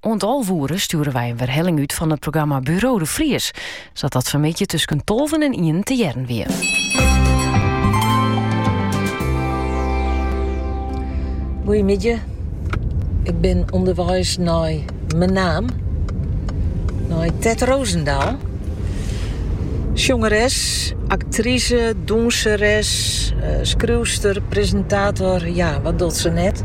Oant alve oere stjoere wy in werhelling út fan it programma Buro de Vries, sa't dat fanmiddei tusken tolven en ienen te hearren wie. Goeiemiddei. Ik bin ûnderweis nei Menaam, nei Tet Rozendal. Sjongeres, aktrise, dûnseres, skriuwster, presintator, ja, wat docht se net?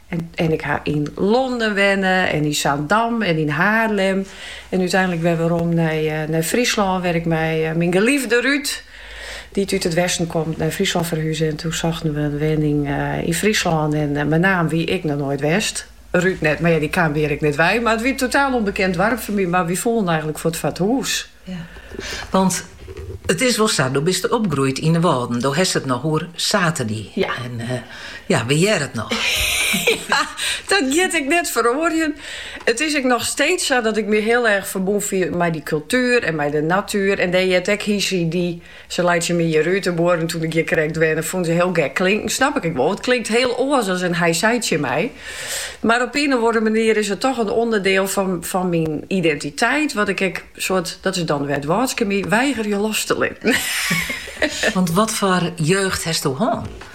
En ik ha yn Londen wenne en yn Zaandam en yn Haarlem. En úteinlik wer werom nei, eh, nei Fryslân, wêr't ik mei eh, myn geliefde Ruud, dy't út it westen komt, nei Fryslân ferhuze. En toen sochten we in wenning eh, yn Fryslân en eh, Menaam wie ik noch noait west. Ruud net, mar ja, dy kaam hjir ek net wei. Mar it wie in totaal ûnbekend doarp foar my, mar wy foelen eigenlik fuort foar it hûs. Want it is wol sa, do bist opgroeid yn de Wâlden. Do hast it noch oer saterdei. Ja. En ja, we hearre it noch. ja, dat giet ek net feroarjen. It is ek noch steeds sa dat ik me heel erg ferbûn fiel mei dy kultuer en mei de natuer. En dêr heart ek hy, sy, dy Se laitsje my hjir út, de buorren toen ik hjir krekt wenne fûnen se hiel gek klinken. Snap ik ek wol, want it klinkt hiel oars as in hy sei tsjin my. Mar op ien of oare manier is it toch in ûnderdiel fan myn identiteit, wat ik ek soart, dat is dan wer it Wâldske my, weigerje los te litten. Want watfoar jeugd hasto hân?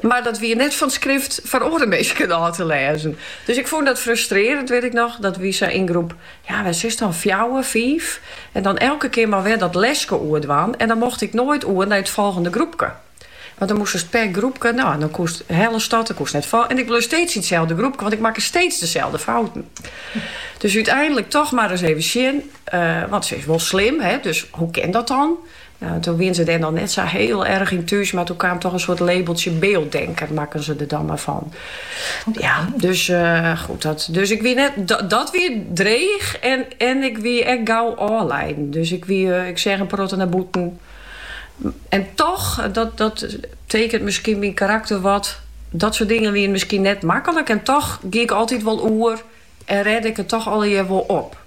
Mar dat wie net fan skrift foar oare minsken ôf te lêzen. Dus ik fûn dat frustrearrend, wit ik noch. Dat wie sa yn groep, ja wat sis dan, fjouwer, fiif. En dan elke kear mar wer dat leske oer dwaan. En dan mocht ik noait oer nei it folgjende groepke. Want dan moastst per groepke, no dan koest helle stad, dan koest net fol. En ik bleau steeds yn itselde groepke, want ik makke steeds deselde fouten. Dus úteinlik toch mar ris even sjen, want se is wol slim, hè, dus hoe kin dat dan? Toen wiene se dêr noch net sa hiel erch yn thús, mar toen kaam toch in soart labeltsje beelddenker, makken se der dan mar fan. Ja, dus goed, dus ik wie net, dat wie dreech en ik wie ek gau ôfleiden. Dus ik wie, ik seach in protte nei bûten. En toch, dat tekent miskien myn karakter wat, dat soart dingen wiene miskien net maklik en toch gie ik altyd wol oer En rêde ik it toch allegear wol op.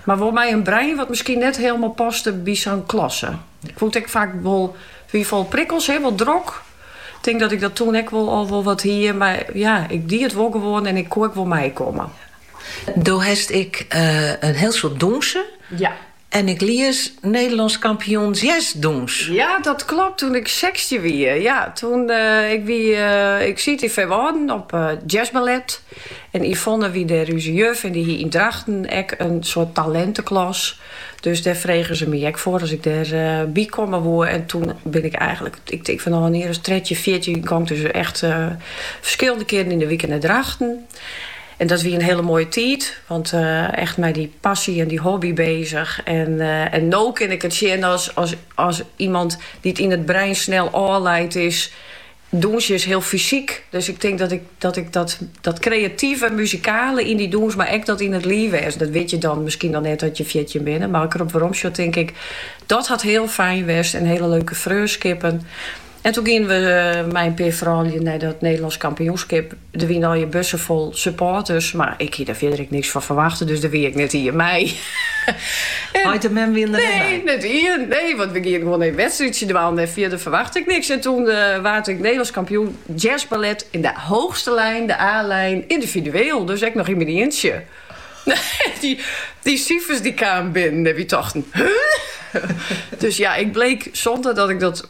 Mar wol mei in brein wat miskien net hielemaal paste by sa'n klasse. Ik wol it ek faak wol, wie fol prikkels, hè, wol drok. Ik tink dat ik dat toen ek wol al wol wat hie, mar ja, ik die it wol gewoan en ik koe ek wol meikomme. Do hast ek in hiel soad dûnse. Ja. En ik lies Nederlands kampioen jazzdûns. Ja, dat klopt, toen ik sechstjin wie. Ja, toen ik wie, ik siet yn Feanwâlden op jazzballet. En Yvonne wie dêr ús juf en dy hie yn Drachten ek in soart talinteklas. Dus dêr frege se my ek foar as ik dêr by komme woe. En toen bin ik eigenlik, ik tink fanôf in jier as trettjin, fjirtjin, gong ik dus echt ferskillende kearen yn de wike nei Drachten. En dat wie in hiele moaie tiid, want echt mei dy passy en dy hobby bezich. En, en no kin ik it sjen as, as iemand dy't yn it brein snel ôfleid is. Dûnsjen is hiel fysyk, dus ik tink dat ik dat, ik dat, dat kreative, muzikale yn dy dûns, mar ek dat yn it live wêzen. Dat wit je dan miskien dan net as je fjirtjin binne, mar as ik derop weromsjoch tink ik, dat hat hiel fijn west en hiele leuke freonskippen. En toen gienen we mei in pear froulju nei dat Nederlands kampioenskip. Der wiene hiele bussen fol supporters, mar ik hie der fierder ek niks fan ferwachte, dus der wie ek net ien mei. Heit en mem wiene der net by? Nee, net ien. Nee, want we giene gewoan even wedstrydje dwaan en fierder ferwachte ik niks. En toen waard ik Nederlands kampioen jazzballet in de hoogste lijn, de A-lijn, individueel. Dus ek nog yn myn ientsje. Dy, dy sifers dy kamen binnen en wy tochten, huh? Dus ja, ik bleek sûnder dat ik dat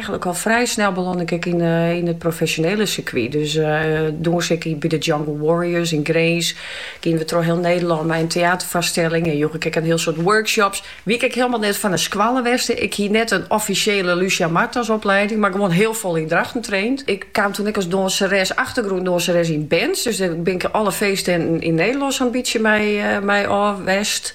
Eigenlik al frij snel belân ik ek yn it profesjonele sirkwy. Dus dûnse ik by de Jungle Warriors yn Grins. Giene we troch hiel Nederlân mei in teäterfoarstelling en joech ik ek in hiel soad workshops. Wie ik ek hielemaal net fan in skoalle west. Ik hie net in offisjele Lucia Marthas oplieding, mar gewoan hiel fol yn Drachten traind. Ik kaam toen ek as dânseres, achtergrûndânseres, yn bands. Dus dêr bin ik alle feesttinten yn Nederlân so'n bytsje mei ôf west.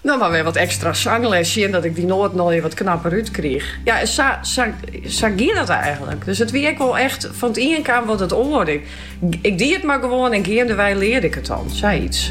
Noch mar wer wat ekstra sangles sjen dat ik dy noaten allegear wat knapper út kriich. Ja, en sa, sa, sa gie dat eigenlik. Dus it wie ek wol echt fan it ien kaam wat it oare. Ik die it mar gewoan en geandewei learde ik it dan, sa iets.